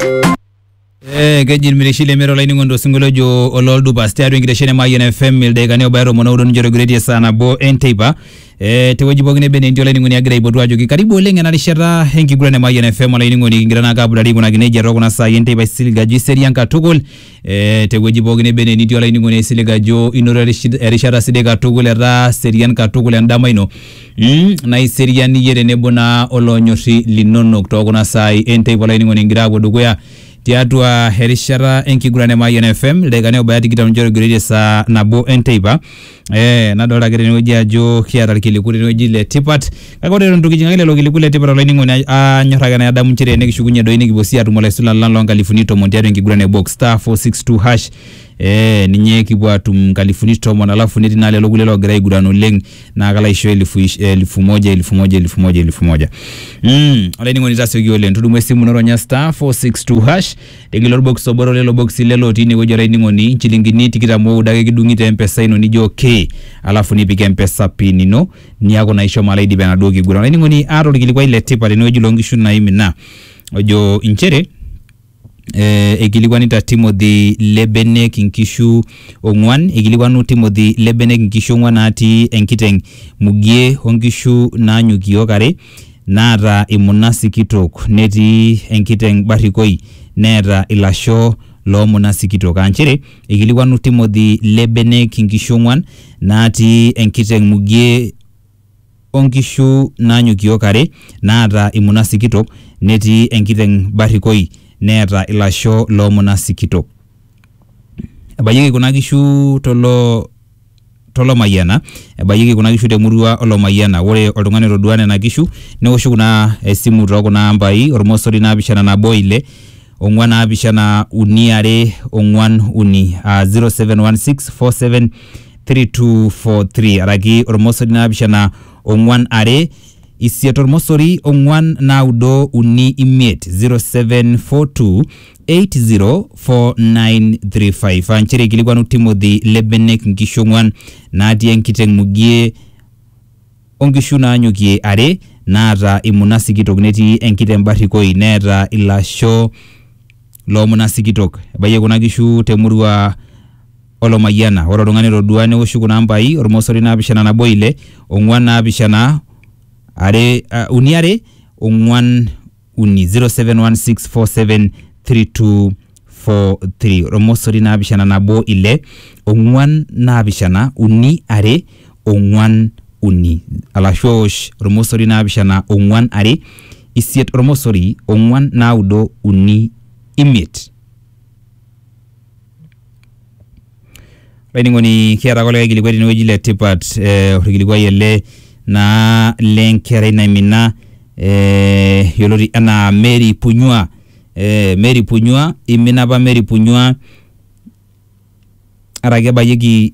Eh, keji irmireshi lemero laining'oni tosinkolio ojo ololdupas tiatua enkitesheni e Mayian FM ildaikani obaya tomon oudo nincho togireiti e saa nabo enteipa eh, tewueji pookin nebe netii olainining'oni agira aipotu ajoki karibu oleng ena rishata enkiguran e Mayian FM olainining'oni kigira naake apudari aikunaki nejia tookuna saai enteipa aisilig ajo iserian katukul Eh, tewueji pooki neba ene nitii olainining'oni aisilig ajo inoto erish- erishata sidai katukul etaa serian katukul endama ino mm, naa iserian iyie tenebo naa olonyorri linonok tookuna saai enteipa olainining'oni ingira apuo dukuya tiatua erishata enkiguran e Mayian FM ildaikani obaya tikitam ninche otogiroitie saa nabo enteipa Eh, nadolta ake tenewueji ajo kiata irkiliku tenewueji le tipat kake ore eton itu kijing ake lelo kiliku le tipat olainining'oni ai- anyor ake nadamu nchere enikishukunye doi nikipuo sii atum olaisulan lang loonkalifuni tomon tiatua enkiguran e box star 462 hash eh, ninye kipuo atum nkalifuni tomon alafu netii naa lelo kulie loogira aiguran oleng naa kalo aisho elfu ish- elfu moja elfu moja elfu moja elfu moja mm, olainining'oni tasioki oleng tudumu esimu ino ronya star 462 hash Tegila olbokis obo to lelo bokisi ile lootii ine wueji olainining'oni, inchilingini tikitam ooudo ake kidung'i te mpesa ino nijo okay, alafu nipik mpesa pin ino niaku naa ishomo alo aidip enaduo kiguran. Olainining'oni aata olkilikuai le tipat tene wueji loo nkishu naimina ojo inchere eh, eikilikuanita Timothy le benek inkishu ong'uan, eikilikuanu Timothy le benek inkishu ong'uan naatii enkiteng' mugie o nkishu naanyok iyiook are naata imuna sikitok netii enkiteng barrikoi neeta ilasho loo muna sikitok. Aa nchere eikilikwanu Timothy le benek inkishu ong'uan naatii enkiteng mugie o nkishu naanyokiok are naata imuna sikitok netii enkiteng barrikoi neeta ilasho loo muna sikitok. Ebayieki kuna kishu to tolomayiana ebayieki kuna kishu temurua olomayiana ore oltung'ani otodua nena kishu neoshu kuna esimu too kuna ambai ormosori naapishana nabo ile ong'uan naapishana uni are ong'uan uni aa 0716473243 araki ormosori naapishana ong'uan are isiet ormosori ong'uan naudo uni imiet 0742 804935 aa nchere eikilikuanu Timothy le benek nkishu ong'uan naatii enkiteng mugie o nkishu naanyokie are naata imuna sikitok netii enkiteng barrikoi neeta ilasho loo muna sikitok. Ebayie kuna kishu te murua o Lomayiana. Ore oltung'ani otodua neoshu kuna ambai olmosori naapishana nabo ile, ong'uan naapishana are, uni are, ong'uan uni 0716473243 ormosori naapishana nabo ile ong'uan naapishana uni are ong'uan uni alashu owosh ormosori naapishana ong'uan are isiet ormosori ong'uan naudo uni imiet Olainining'oni kiata ake likae kilikuai tenewueji le tipat eh, orkilikuai ele naa lenkerai naimina eh, yioloti enaa Mary Punyua eh, Mary Punyua imina apa Mary Punyua araki ebayieki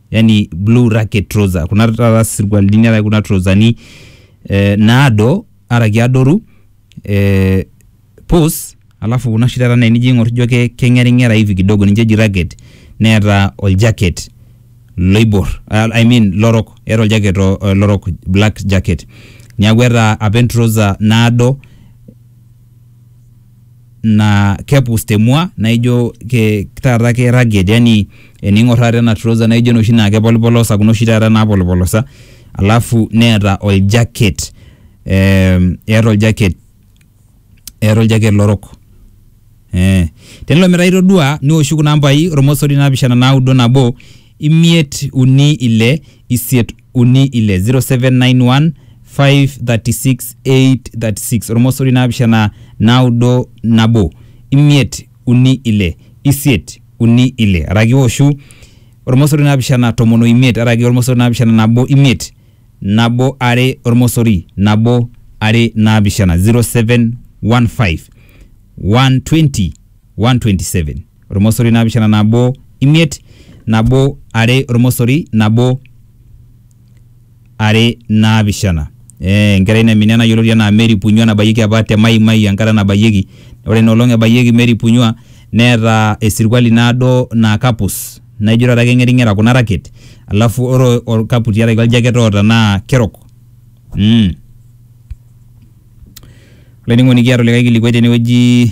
yani blue racket trouser kuna taata sirkualini araki kuna trousani eh, naado araki adoru eh, pus alafu kuna oshi taata naa enijo aing'or ijo ke- keng'ering'era hivi kidogo ninche eji racket neeta oljaket loibor ah, I mean lorok eeta oljaket o- o- lorok black jacket niaku eeta apa entrouser naado naa kepus te mua naa ijo ke taata ke rugged yani ening'or taata ena trouser naa ijo enoshi naa kepolipolosa kuna oshi taata napolipolosa alafu neeta ol jacket ee eeta ol jacket eeta ol jacket lorok ee. Tenelo metaa itodua niwoshu kuna ambai ormosori naapishana naudo nabo imiet uni ile isiet uni ile 0791 536 836 ormosori naapishana naudo nabo imiet uni ile isiet uni ile araki iwoshu ormosori naapishana tomon oimiet araki ormosori naapishana nabo imiet nabo are ormosori nabo are naapishana 0715 120 127 ormosori naapishana nabo imiet nabo are ormosori nabo are naapishana eh, enkerai naimina ena yioloti anaa Mary Punyua nabayieki apa te Mai Mai enkata nabayieki ore ina olong ebayieki Mary Punyua neeta esirkwali naado naa kapus naijo taata keng'ering'era kuna raket alafu ore orkapu tiaraki oljaket oota naa kerok mm. olainining'oni kiata olikae kilikuai tenewueji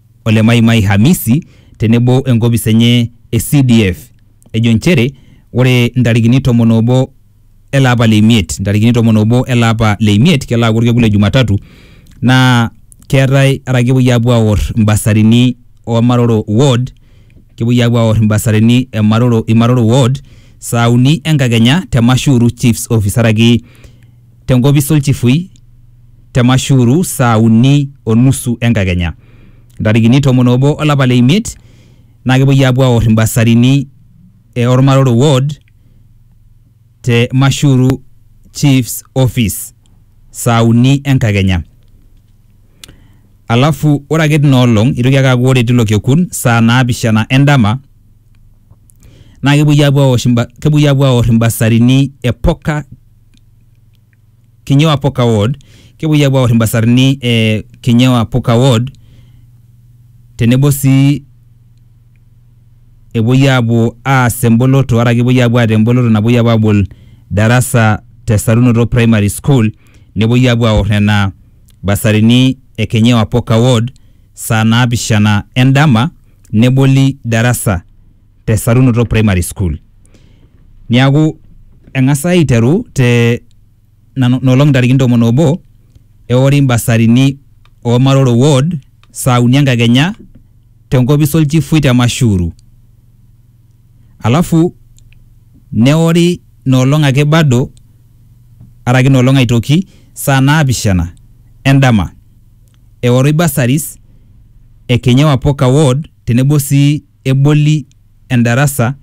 ole Mai Mai Hamisi tenebo enkopis enye e CDF ejo nchere ore ntarikini tomon obo ele apa le imiet ntarikini tomon obo ele apa le imiet kelo aaku orkekun le Jumatatu naa keetae ara kepuoi apuo aor imbasarini oo Maroro ward kepuoi apuo aor imbasarini e Maroro Imaroro ward saa uni enkakenya te Mashuru Chiefs office araki te nkopis olchifui te Mashuru saa uni o nusu enkakenya. Ntarikini tomon obo olapa le imiet naa kepuoi aapuo aor imbasarini e Ormaroro ward te Mashuru chiefs office saa uni enkakenya. Alafu ore ake tina olong eitoki ake aaku ore tilo kekun saa naapishana e ndama naa kepuoi aapuo aosh kepuoi aapuo aor imbasarini e Poka Kinyo Apoka Ward, kepuoi apuo aor imbasarni e Kinyo Apoka Ward tenebo sii epuoi apuo aas emboloto araki epuoi apuo aata emboloto napuoi apuo abol darasa te Sarunoto Primary School, nepuoi apuo aor nena basarini e Kinyo Apoka Ward saa naapishana endama neboli darasa. te Sarunoto Primary School. Niaku eng'asa aiteru te nano- nolong ntarikini tomon obo eori mbasarini o Maroro Ward saa uni enkakenya tenkopis olchifui te Mashuru. Alafu neori nolong ake bado araki nolong aitoki saa naapishana endama eoroi bursaries e Kenyewa Poka Ward tenebo sii eboli endarasa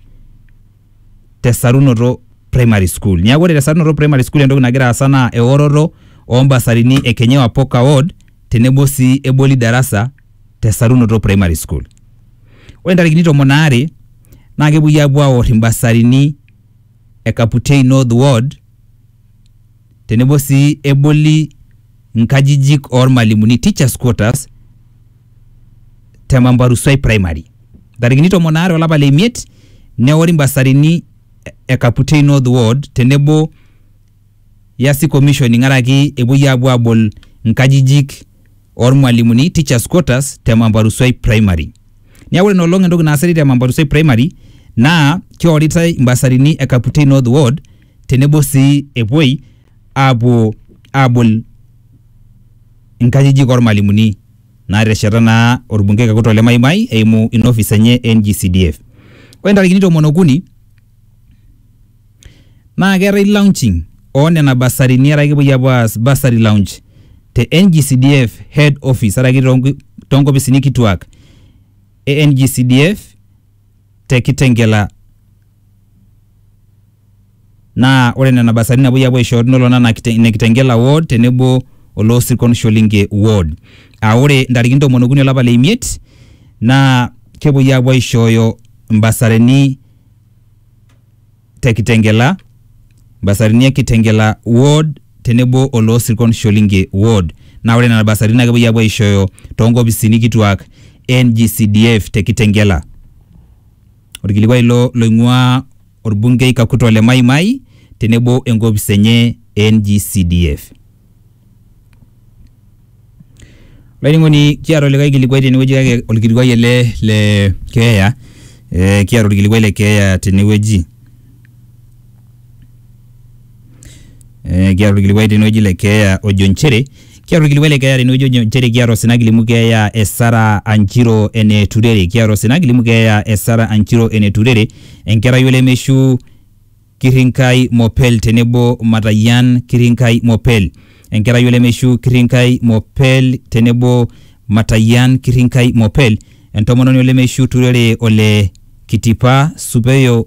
te Sarunoto Primary School. Niaku ore te Sarunoto Primary School entoki nagira aasa naa eoroto oo mbasarini e Kenyewa Poka Ward tenebo sii eboli darasa te Sarunoto Primary School. Ore ntarikini tomon aare naa kepuoi aapuo aor imbasarini e Kaputei North Ward tenebo sii eboli nkajijik oo lmalimuni, teachers quarters, te Mambarusoi Primary. Ntarikini tomon aare olapa le imiet neori mbasarini e Kaputei North Ward tenebo Yasi Commission ingaraki epuoi apuo abol nkajijik oo lmalimuni, teachers quarters, te Mambarusoi Primary. Niaku ore ina olong entoki naasitae te Mambarusoi Primary naa keoritai mbasarini e Kaputei North Ward tenebo sii epuoi aapuo aabol inkajijik ormalimuni naatesheta naa orbungei kakutok le Mai Mai eimu ina office enye e NGCDF. Ore ntarikini tomon okuni naa keetae launching oo nena basarini araki kepuoi aapuo aas bursary launch te NGCDF head office araki toonk toonkopisini kituak e NGCDF te Kitengela Naa ore nena basari napuoi apuo aisho nelo nana ine Kitengela ward tenebo oloo sirkon Sholinge ward. Aa ore ntarikini ntomoni okuni olapa le imiet naa kepuoi apuo aishooyo mbasarini te Kitengela, mbasarini e Kitengela ward tenebo oloo sirkon Sholinge ward. Naa ore nena basarini naa kepuoi apuo aishooyo too nkopisini kituak e NGCDF te Kitengela. Olkilikuai ilo loing'uaa olbungei Kakuto le Mai Mai tenebo enkopis enye e NGCDF. Olainining'oni kiata olikae kilikuai tenewueji kake olkilikuai ele le keeya eh kiata olkilikuai le keeya tenewueji. Eh, kiata orkilikuai tenewueji le keeya ojo nchere kiata orkilikuai le keeya tenewueji ojo nchere kiata osina kilimu keeya e Sara Anjiro ene Turere kiata osina kilimu keeya e Sara Anjiro ene Turere enkerai olemeishu Kirrinkai Mopel tenebo Matayian Kirrinkai Mopel enkerai olemeishu Kirrinkai Mopel tenebo Matayian Kirrinkai Mopel entomononi olemeishu Turere ole Kitipa Supeyo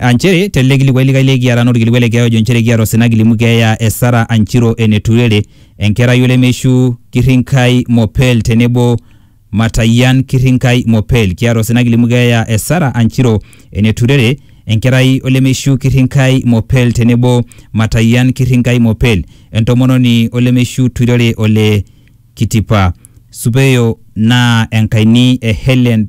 Aa nchere te ele kilikuai likae le kiara naa olkilikuai le keeya ojo nchere kiata osina kilimu keeya e Sara Anchiro Eneturere, enkerai olemeishu Kirrinkai Mopel tenebo Matayian Kirrinkai Mopel. Kiata osina kilimu keeya e Sara Anchiro Eneturere, enkerai olemeishu Kirrinkai Mopel tenebo Matayian Kirrinkai Mopel, entomononi olemeishu Tuirere Ole Kitipa Supeyo naa enkaini e Hellen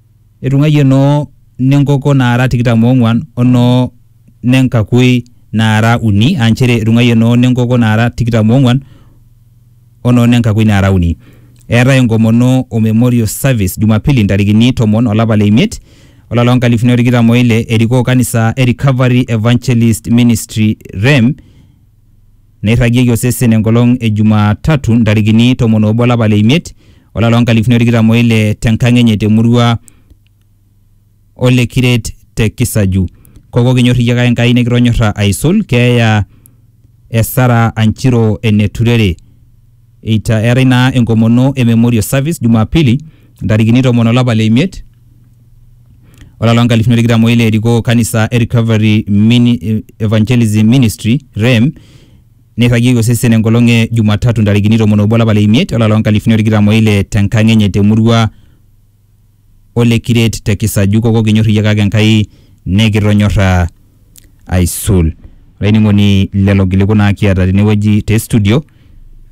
Etung'aiye noo ne nkoko naara tikitam oong'uan o noo ne nkakui naara uni, aa nchere etung'aiye noo ne nkoko naara tikitam oong'uan o noo ne nkakui naara uni. Eetae enkomono o Memorial Service Jumapili ntarikini tomon o lapa le imiet, olari loo nkalifuni o tikitam o ile, erikoo kanisa e Recovery Evangelist Ministry, REM, neirragieki osesen enkolong e Jumatatu ntarikini tomon obo olapa le imiet olapa loo nkalifuni o tikitam o ile tenkang enye temurua Ole Kiret te Kisaju. Koko kinyor iyie kake Enkai nikitonyorra aisul, keeya e Sarah Anchiro ene Turere. Eita eetae naa enkomono e Memorial Service Jumapili ntarikini tomon olapa le imiet olapa loo nkalifuni are tikitam oile erikoo kanisa e Recovery Mini Evangelism Ministry REM neirragieki osesen enkolong e Jumatatu ntarikini tomon obo olapa le imiet olapa loo nkalifuni are tikitam oile tenkang enye te murua ole kiret te kisaju koko kinyor iyie kake Enkai nekitonyorra aisul. Olainining'oni lelo kiliku naa kiata tenewueji te studio.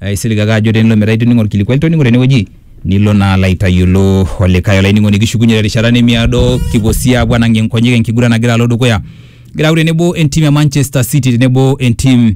Aisilig ake ajo tenelo metaa itoning'o olkilikuai litoning'o tenewueji nilo naa alo aitayiolo olikae. Olainining'oni kishukunye terishata nemiado kipuo sii apuo anang'ie nkonyek enkiguran nagira alo dukuya. Egira aaku tenebo entim e Manchester City tenebo entim